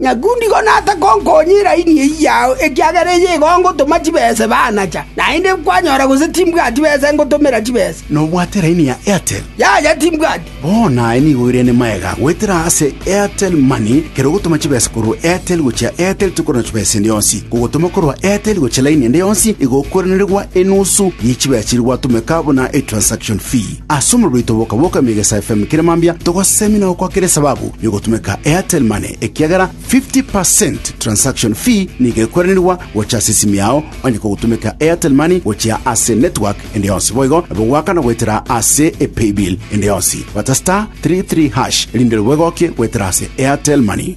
“Nakundigo nase konkonya eraini eyio yao, ekiagera eye igo ngotoma chibesa ebe anacha. Naende kwanyora gose timbwati besa ngotomera chibesa?” “Nobwate eraini ya Airtel?” “Yaya, timbwati.” Bono aye nigo oirane magega goetera ase Airtel Money, kera ogotoma chibesa korwa Airtel gochia Airtel tokorora chibesa ende yonsi. Kogotoma korwa Airtel gochia laini ende yonsi igo okoiranerigwa enusu ye chibesa chiria gwatomeka buna etransaction fee. Ase omobere oito boka boka Migesa FM kera mambia togosemina gokwakera esababu yogotumeka Airtel Money ekiagera 50% transaction fee nigo ekweranirwa gocha ase esimi yao onye kogotumeka Airtel Money gochia ase network ende yonsi boigo nabo gwakana goetera ase e paybill ende yonsi bata star 33 hash erinde rwo bwegokie goetera ase Airtel Money.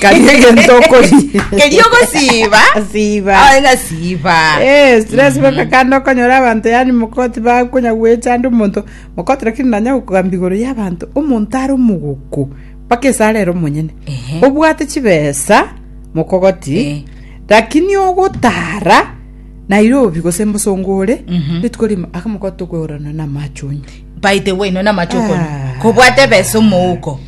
Kari egento okori. keria ogosiiba Siba. Ah, ng'a siiba Eh, stress baka kandi okonyora abanto yani mokoti bakonya gwecha ande omonto mokoti lakini nanya gokogamba igoro ya abanto omonto are omogoko mpaka esara ero monyene Ehe. obwate chibesa Eh. mokogoti lakini ogotara nairobi gose mbosongo ore Mhm. rituko rimo aka mokoti tokwegorana na amachonyo by the way nona machokono Ah. kobwate besa omouko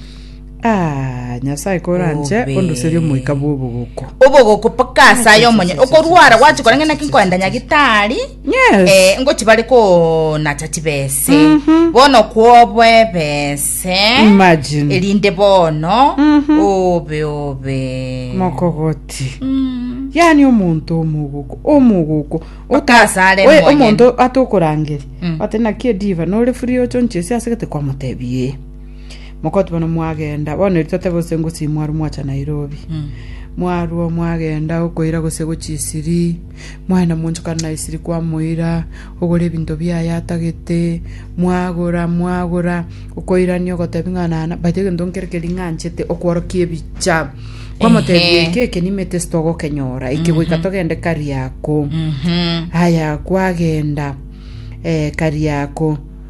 Aa, Nyasae koranche Obe. ondoserie omoika bw'obogoko. obogoko mpaka ase aye omonye okorwara gwachi korenge naki nkoenda nyagitari Yes. eh, ngochi bare konacha chibese Mhm. bono kwobo ebese Imagine. erinde bono Mhm. obe obe Mokogoti. Mm. Yani omonto omogoko, omogoko. Mpaka ase are Oye, omonyene. omonto atokorangeri. Mm. Ate naki ediva nore free ochonchesi ase gete kwamotebie. Mokoti bono mwagenda, bono eri totebe gose ngosi mwarwa mwacha Nairobi. Mwarwa mwagenda okoira gose gochi isiri, mwaenda mwanchokana na isiri kwamoira, ogora ebinto biaye atagete, mwagora mwagora, okoirania ogotebi ng'a nana, baito egento nkere keri ng'anchete okworokia ebicha. Kwamotebi Ehe. eke eke nimete sitogokenyora, eke goika togende Kariakoo. Mhm. Haya kwagenda eh, Kariako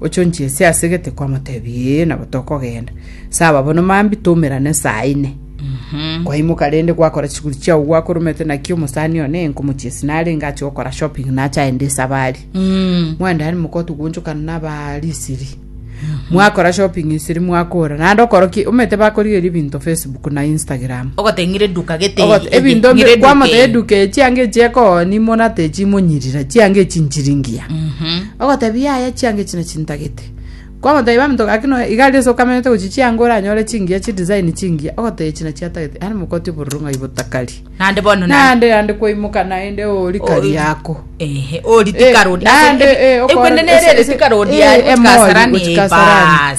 Ochonchie ase ase gete kwamotebi ee nabo tokogenda. Saba bono mambi toumerane saa ine. Kwaimoka rende gwakora chiguri chiao gwakoromete naki omosani one enkomochia ase narenge ache gokora shopping nache aende esabari. Mwendani mokotu gwonchokana naba risiri. Mwakora shopping isiri mwakora. Nande okoroki omete bakorigeria ebinto Facebook na Instagram. ogoteng'ira eduka gete Ogot- ebinto ng'ira mbe- kwamothe eduka echi ange echi ekoni monate echi monyirira chiange echi nchiringia Ogotebia aya chianga echi nachintagete. Kwamotebi baminto gaki nonya igari ase okamenyete gochia chianga oranyore chingiya chidesign chingiya ogotebia echi nachiatagete yaani mokoti obororo ng'ai botakari. Naende bono na Naende yande kwaimoka naende ori kari yako. ehe ori Eh, tikaro naende, eh, okore- ekwende nere ese- ere ese- tikaro ori eh, emori ari gochia gochia Kasarani, Kasarani. baas.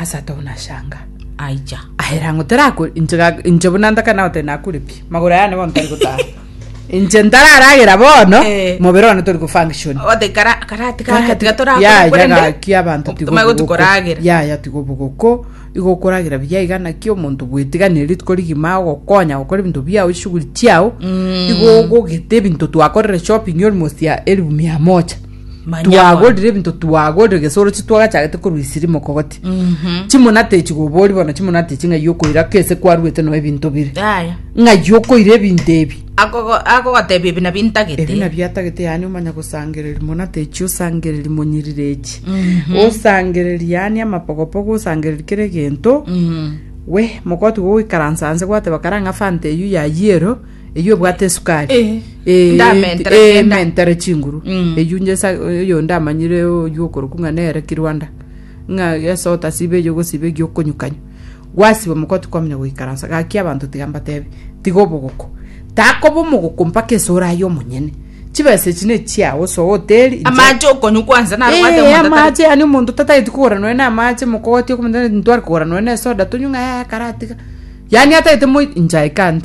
Asato nashangaa. Aicha. Ahera ng'o terakure inche ga- inche buna ntaka nao tenakure pi magoro aya nigo ntari gotara inche ntararagera bono Eh. mobere one tori gufunction Ote kara karati kaka tiga torakora yaya korende. gaki abantu tigo Tuma obuguku. gotukoragera. yaya tigo obuguku igo okoragera buya iga naki omonto bwetiganire rituko rigima ogokonya gokora ebinto biao eshughuli chiao Mm. igo ogogete ebinto twakorire shopping almost ya elfu mia moja Manya bono. twagorire ebinto twagorire gese orochi twagachagete korwa isiri mokogoti Mhm. chimuna techi gobori bono chimuna techi ng'ai okoira kese kwaruete no ebinto bire Yaya. ng'ai okoira ebinto ebi Akogo- akogotebia ebi nabio ebi ntagete nabio atagete yani omanya gosangereri muna techi osangereri monyirire echi osangereri yani amapogopogo osangereri kera egento Mhm. we mokoti goikaransa nse gwateba kara ng'a fanta eyio yayie ero Eyio ebwate esukari. Eh, Eh, ndamentere eh, kenda. mentere chinguru. Mm. Eyio njesa eyo ndamanyire oyio okoroku ng'a nere kirwanda. Ng'a yesa otasiba eyo gosiba eyo okonyukanya. Gwasiba moko tikwamanya goikaransa. Gaki abanto tiga mbatebe. Tiga obogoko. Takoba omogoko mpaka esura aye omonyene. Chibesa echi nechiao soa oteri. inche- amache okonyu kwanza narwate Eh, omonto atari- amache yani omonto tatageti kogora noe na amache mokogotie komenta ntware kogora noe na esoda tonywe ng'a eh, karatiga yani atagete moi inche I can't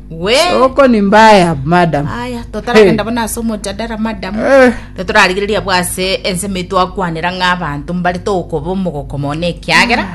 We. oko ni mbaya madam Aya, totaragenda bono ase omojadara madam. Eh. Totorarigereria abwo ase ensemo eye twakwanera ng'a abanto mbare tokoba omogoko mono ekiagera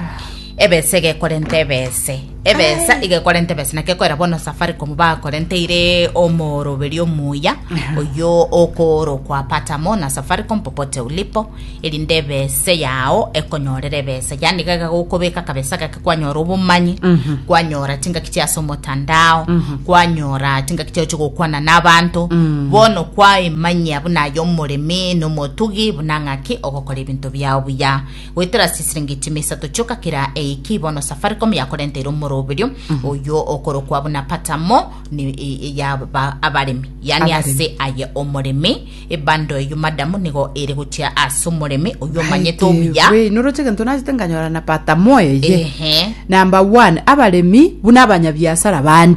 ebesa egekorenta ebese. Ebesa egekorenta ebesa naki ekorera bono Safaricom bakorenteire omoroberio omuya oyo okoorokwa patamo na Safaricom popote ulipo erinde ebese yao ekonyorere ebesa yani gaiga gokobeka akabesa gake kwanyora obomanyi kwanyora chingaki chia ase omotandao kwanyora chingaki chiao chigokwana n'abanto bono kwaimanyia buna aye omoremi n'omotugi buna ng'aki ogokora ebinto biao buya goetera ase chisiringi chime isato chioka kera eiki bono safaricom yakorenteire omoroberio oyo okorokwa buna patamo ni- e- e- ya ba- abaremi yani Abaremi. ase aye omoremi Ebando eyio madam nigo ere gochia ase omoremi oyio omanyete obuya. Wee, noroche egento nachete nkanyora na pata moyo eye. Ehe. Number one, abaremi buna abanyabiasara bande.